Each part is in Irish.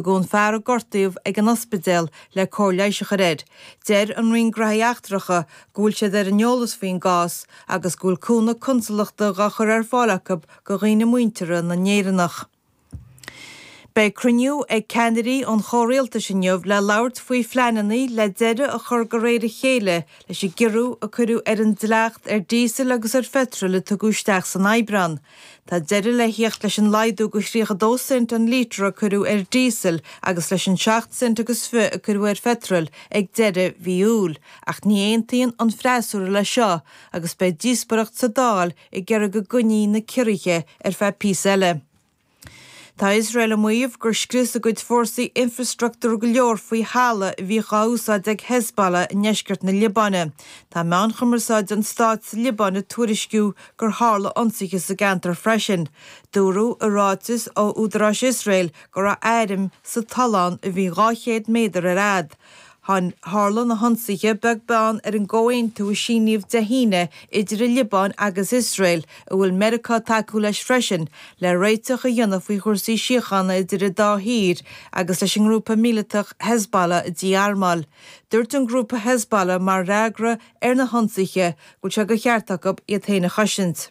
Tugadh an fear a gortaíodh ag an ospidéal le cóir leighis a chur air. Deir an Roinn Gnóthaí Eachtracha go bhfuil siad ar an eolas faoin gcás agus go bhfuil cúnamh consalachta dhá chur ar fáil acu go dhaoine muinteartha na nÉireannach. Beidh cruinniú ag ceannairí an chomhrialtais inniu le labhairt faoi phleananna le deireadh a chur de réir a chéile leis an gciorrú a cuireadh ar an dleacht ar díosal agus ar pheitreal a tugadh isteach san Aibreán. Tá deireadh le theacht leis an laghdú go thríocha dó cent an lítear a cuireadh ar díosal agus leis an seacht cent agus fiche a cuireadh ar phetrol ag deireadh mhí Iúil, ach ní aontaíonn an freasúra leis seo agus beidh díospóireacht sa Dáil ag iarraidh go gcoinneofaí na ciorruithe ar feadh píosa eile. Tá Iosrael ag maíomh gur scrios a gcuid fórsaí infreastruchtúr go leor faoi thalamh a bhíodh á úsáid ag Hezbollah i ndeisceart na Liobáine. Tá meáin chumarsáide an stáit sa Liobáin ag tuairisciú gur tharla ionsaithe sa gceantar freisin. Dúradh i ráiteas ó údaráis Iosrael go raibh airm sa tollán a bhí 200 méadar ar fhad. Tharla na hionsaithe beag beann ar an gcomhaontú a síníodh Dé hAoine idir an Liobáin agus Iosrael, a bhfuil Meiriceá ag tacú leis freisin, le réiteach a dhéanamh faoi chúrsaí síochána idir an dá thír agus leis an ngrúpa míleatach Hezbollah a dhí-armáil. Dúirt an grúpa Hezbollah mar fhreagra ar na hionsaithe go bhfuil sé de cheart acu iad féin a chosaint.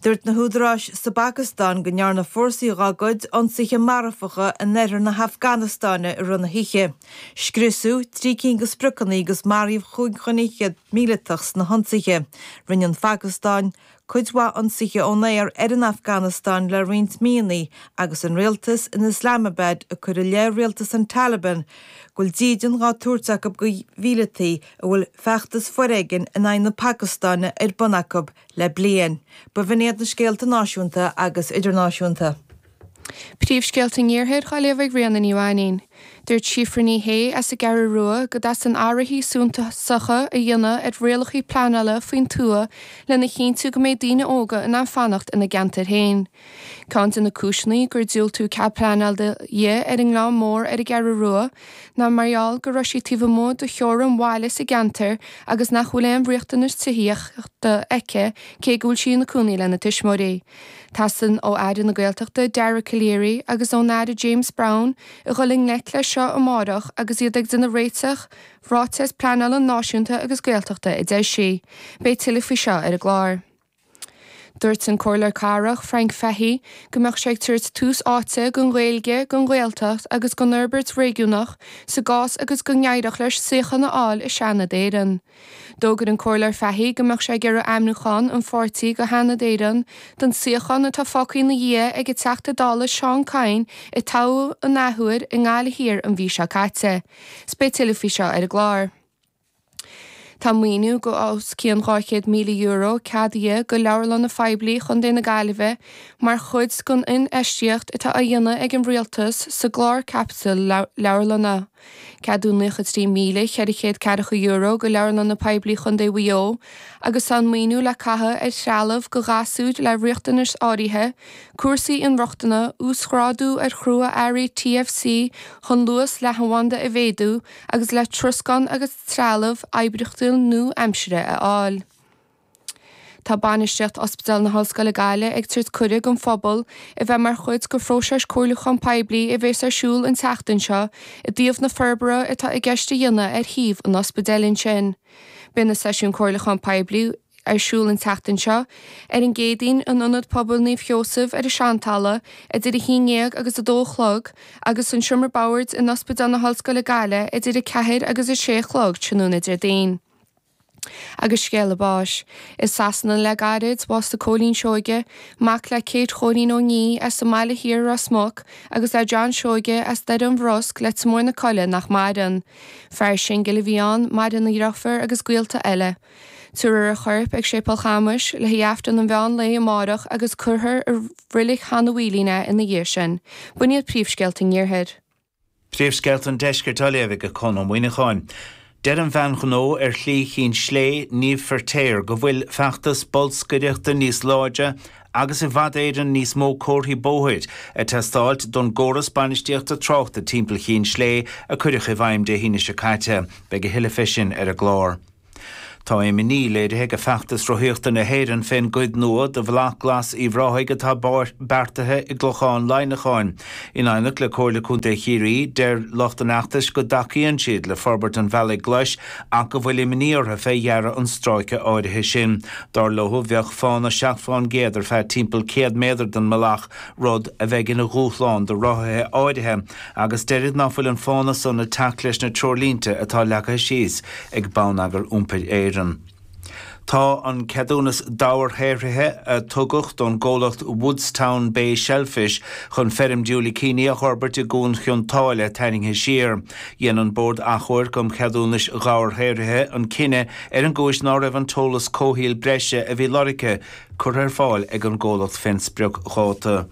Dúirt na húdaráis sa bPacastáin go ndearna fórsaí dá gcuid ionsaithe marfacha in oirthear na hAfganastáine i rith na hoíche. Scriosadh trí cinn de spriocanna agus maraíodh chúig dhuine fhichead míleatach sna hionsaithe. Rinne an Phacastáin cuid mhaith ionsaithe ón aer ar an Afganastáin le roinnt míonna agus an rialtas in Islamabad ag cur i leith rialtas an Taliban go bhfuil dídean á tabhairt acu do mhíleataí a bhfuil feachtas foréigin in aghaidh na Pacastáine ar bun acu le bliain. B'in iad na scéalta náisiúnta agus idirnáisiúnta. Príomhscéalta an Iarthair dhá léamh ag Ríona Ní Mhainín. Dúirt Síofra Ní Shé as an gCeathrú Rua go dteastaíonn athruithe suntasacha a dhéanamh ar rialacha pleanála faoin tuath lena chinntiú go mbeidh daoine óga in ann fanacht ina gceantair féin. Ceann de na cúiseanna gur diúltaíodh cead pleanála di ar an nGleann Mór ar an gCeathrú Rua ná mar gheall go raibh sí taobh amuigh de theorainn bhaile an cheantair agus nach bhfuil aon riachtanas tithíochta aici cé go bhfuil sí ina cónaí lena tuismitheoirí. Teastaíonn ó Aire na Gaeltachta Dara Calleary agus ón Aire James Browne a dhul i ngleic leis seo amárach agus iad le dréachtráiteas pleanála náisiúnta agus Gaeltachta a eisiúint. Beidh tuilleadh faoi seo ar an gclár. Dúirt an Comhairleoir Cathrach Frank Fahey go mbeadh sé ag tabhairt tús áite don Ghaeilge, don Ghaeltacht agus don fhorbairt réigiúnach sa gcás agus go n-éireodh leis suíochán a fháil i Seanad Éireann. D'fhógair an Comhairleoir Fahy go mbeadh sé ag iarraidh ainmniúchán an pháirtí go Sheanad Éireann don suíochán atá fágtha ina dhiaidh ag an Teachta Dála Seán Kyne a toghadh an athuair i nGaillimh Thiar an mhí seo caite. Is beidh tuilleadh faoi seo ar an gclár. Tá maoiniú go os cionn €200,000 ceadaithe go Leabharlanna Phoiblí Chontae na Gaillimhe mar chuid den infheistíocht atá á dhéanamh ag an Rialtas sa gclár caipitil leabharlainne. Ceadaíodh €93,440 go Leabharlanna Poiblí Chontae Mhaigh Eo agus tá an maoiniú le caitheamh ar threalamh go ghasúir le riachtanais áirithe, cúrsaí inrochtana, uasghrádú ar chrua-earraí TFC chun luas leathanbhanda a mhéadú agus le troscán agus trealamh oibríochtúil nua-aimsire a fháil. Tá bainistíocht Ospidéal na hOllscoile Gaillimh ag tabhairt cuireadh don phobal a bheith mar chuid de phróiseas comhairliúchán poiblí a bhéas ar siúl an tseachtain seo i dtaobh na forbartha atá i gceist a dhéanamh ar shuíomh an ospidéil ansin. Beidh na seisiúin comhairliúchán poiblí ar siúl an tseachtain seo ar an gCéadaoin in Ionad Pobail Naomh Sheosaimh ar an Seantalamh idir 11 agus 2 a chlog agus san Seomra Boird in Ospidéal na hOllscoile Gaillimh idir 4 agus 6 a chlog tráthnóna Déardaoin. agus scéala báis. I Sasana le gairid, bhásaigh Cóilín Seoige, mac le Kate Chóilín Ó Nia as an mBaile Thiar i Ros Muc agus le John Seoige as Doire an Bhrosc, Leitir Móir na Coille nach maireann. Fear singil a bhí ann, maireann a dheirfiúr agus gaolta eile. Tabharfar a chorp ag Séipéal Chamuis le haghaidh Aifreann an mheán lae amárach agus cuirfear i Reilig Sheanadh Mhaoilín é ina dhiaidh sin. B'in iad príomhscéalta an Iarthair. Príomhscéalta an Deiscirt á léamh ag Conn Ó Muíneacháin. Deir an bhean ghnó ar Shlí Chinn Slé, Niamh Firtéar, go bhfuil feachtas bolscaireachta níos láidre agus i bhfad Éireann níos mó comharthaí bóthair ag teastáilt don gcóras bainistíochta tráchta timpeall Chinn Slé a cuireadh i bhfeidhm Dé hAoine seo caite. Beidh a thuilleadh fé sin ar an gclár. Tá imní léirithe ag Feachtas Rothaíochta na hÉireann fén gcuid nua de Bhealach Glas Uíbh Ráthaigh atá beartaithe i gClochán Laighneacháin. In aighneacht le Comhairle Contae Chiarraí, deir lucht an fheachtais go dtacaíonn siad le forbairt an bhealaigh ghlais ach go bhfuil imní orthu fé dhearadh an stráice áirithe sin. Dar leo bheadh fána seacht fén gcéad ar feadh timpeall 100 méadar den mbealach, rud a bheidh ina dhúshlán do rothaithe áirithe, agus deirid ná fuil an fána san ag teacht leis na treoirlínte atá leagtha síos ag Bonneagar Iompair Éireann. Tá an ceadúnas dobharshaothraithe a tugadh don gcomhlacht Woodstown Bay Shellfish chun feirm diúilicíní a dh'fhorbairt i gCuan Chionn tSáile tarraingthe siar. Dhein an Bord Achomhairc um Cheadúnais Dhobharshaothraithe an cinneadh ar an gcúis ná raibh an t-eolas comhshaoil breise a bhí lorgtha curtha ar fáil ag an gcomhlacht fén sprioc-dháta.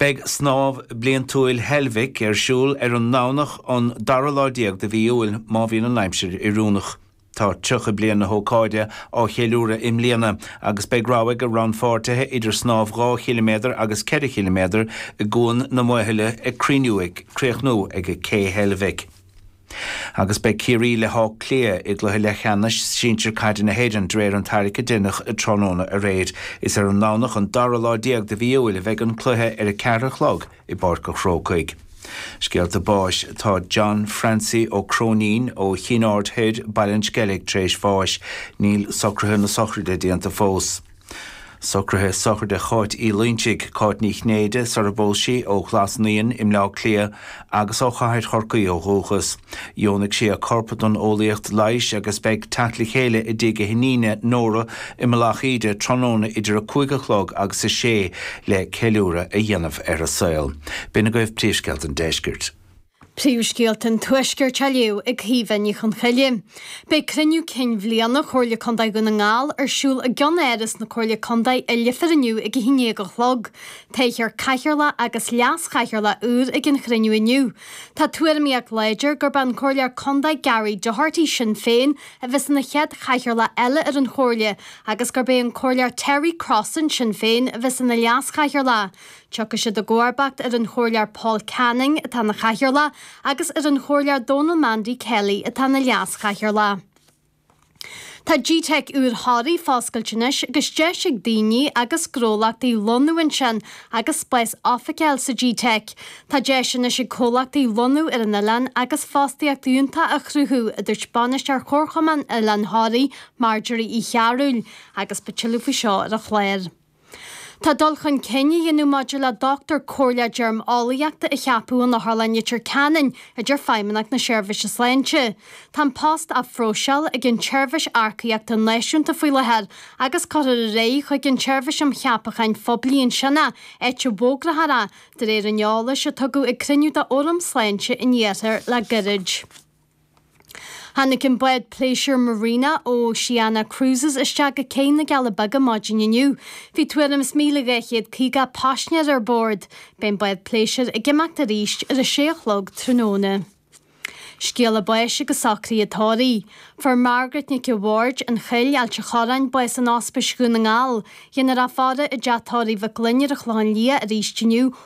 Beidh Snámh Bliantúil Heilbhic ar siúl ar an nDomhnach an dara lá déag de mhí Iúil má bhíonn an aimsir oiriúnach. Tá 30 bliain na hócáide á cheiliúradh i mbliana agus beidh rogha ag rannpháirtithe idir snámh 2 chiliméadar agus 4 chiliméadar i gCuan na Maothaile ag cruinniú ag críochnú ag Cé Heilbhic. Agus beidh Ciarraí le hÁth Cliath i gcluiche leathcheannais sinsir caide na hÉireann de réir an tarraic a deineadh tráthnóna aréir. Is ar an nDomhnach an dara lá déag de mhí Iúil a bheidh an cluiche ar a ceathair a chlog i bPáirc a' Chrócaigh. Scéalta báis Tá John Francie Ó Cróinín ó Chinn Aird Thoir, Baile an Sceilg, tar éis bháis. Níl socruithe na sochraide déanta fós. Socruithe sochraide Cháit Uí Loinsigh, Cáit Ní Chinnéide, sarar phós sí, ó Ghlas Naíon i mBleá Cliath agus ó Chathair Chorcaí ó dhúchas. Dheonaigh sí a corp don eolaíocht leighis agus beidh teacht le chéile i dtigh a hiníne, Nóra, i Mullach Íde tráthnóna idir a cúig a chlog agus a sé le ceiliúradh a dhéanamh ar a saol. B'in agaibh Príomhscéalta an Deiscirt. Príomhscéalta an Tuaiscirt á léamh ag Caoimhe Ní Chonchoille. Beidh Cruinniú Cinn Bhliana Chomhairle Contae Dhún na nGall ar siúl i gCeannáras na Comhairle Contae i Leifear inniu ag 11 a chlog. Toghfar Cathaoirleach agus Leas-Chathaoirleach úr ag an chruinniú inniu. Tá tuairimíocht láidir gurb é an Comhairleoir Contae Gary Doherty, Sinn Féin, a bheas ina chéad Chathaoirleach eile ar an Chomhairle agus gurb é an Comhairleoir Terry Crossan, Sinn Féin, a bheas ina Leas-Chathaoirleach. Tiocfaidh siad i gcomharbacht ar an Chomhairleoir Paul Canning, atá ina chathaoirleach, agus ar an Chomhairleoir Donal Mandy Kelly, atá ina leaschathaoirleach. Tá GTeic úr Thoraí foscailte anois agus deis ag daoine agus gnólachtaí lonnú ansin agus spás oifige a fháil sa GTeic. Tá deis anois ag comhlachtaí lonnú ar an oileán agus fostaíocht fhiúntach a chruthú, a dúirt Bainisteoir Chomharchumann Oileán Thoraí, Marjorie Uí Chearbhaill, agus beidh tuilleadh faoi seo ar an chlár. Tá dul chun cinn á dhéanamh maidir le Dochtúir Comhairleach Deirmeolaíochta a cheapadh in Otharlann Leitir Ceanainn a deir Feidhmeannacht na Seirbhíse Sláinte. Tá an post á phróiseáil ag an tSeirbhís Earcaíochta Náisiúnta faoi láthair agus cuirfear ar aghaidh chuig an tSeirbhís um Cheapacháin Phoiblí ansin é áit a bhfógrófar é, de réir an eolais a tugadh ag cruinniú de Fhóram Sláinte an Iarthair le gairid. Tháinig an bád pléisiúir Marina Oceania Cruises isteach go Cé na gCealla Beaga maidin inniu. Bhí tuairim is míle dhá chéad caoga paisinéir ar bord. Beidh an bád pléisiúir ag imeacht arís ar a sé a chlog tráthnóna. Scéala báis agus socruithe tórraimh. Fuair Margaret Nic a' Bhaird, an Chill, Ailt a' Chorráin, bás in Ospís Dhún na nGall. Déanfar í a fhaire i dTeach Tórraimh Mhic Fhloinn ar an Chlochán Liath arís inniu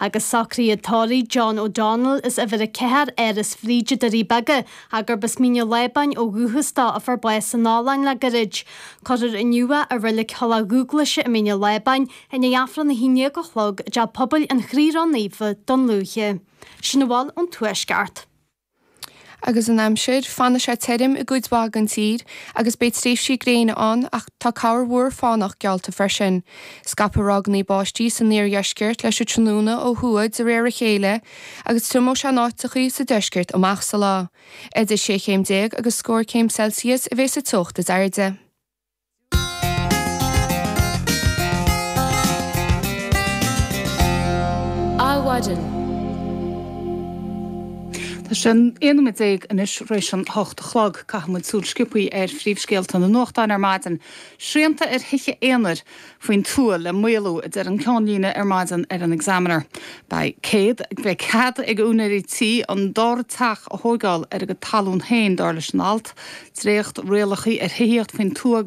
agus socruithe tórraimh John O'Donnell as uimhir a ceathair Áras Bhríde Doirí Beaga gurb as Mín an Lábáin ó dhúchas dó a fuair bás in Albain le goirid. Cuirfear inniu é i Roilig Thulach Dhúghlaise i Mín an Lábáin i ndiaidh Aifreann a haon déag a chlog i dTeach Pobail an Chroí Ró-Naofa Dún Lúiche. Sin a bhfuil ón tuaisceart. agus an aimsir. Fanfaidh sé tirim i gcuid mhaith den tír agus beidh tréimhsí gréine ann ach tá corrmhúr fánach geallta freisin. Scaipfidh ráigeanna báistí san iardheisceart leis an tráthnóna ó thuaidh de réir a chéile agus triomóidh sé in áiteachaí sa deisceart amach sa lá. Idir sé chéim déag agus scór céim Celsius a bheidh sa teocht is airde. Adhmhaidin. Tá sé aon nóiméad déag anois tar éis an hocht a chlog. Caithfimid súil sciobthaí ar phríomhscéalta na nuachtáin ar maidin. Srianta ar thithe aonair faoin tuath le maolú, a deir an ceannlíne ar maidin ar an Examiner. Beidh cead ag, beidh cead ag úinéirí tí an dara teach a thóigeáil ar a gcuid talún féin, dar leis an alt. Dréachtrialacha ar thithíocht faoin tuath agus.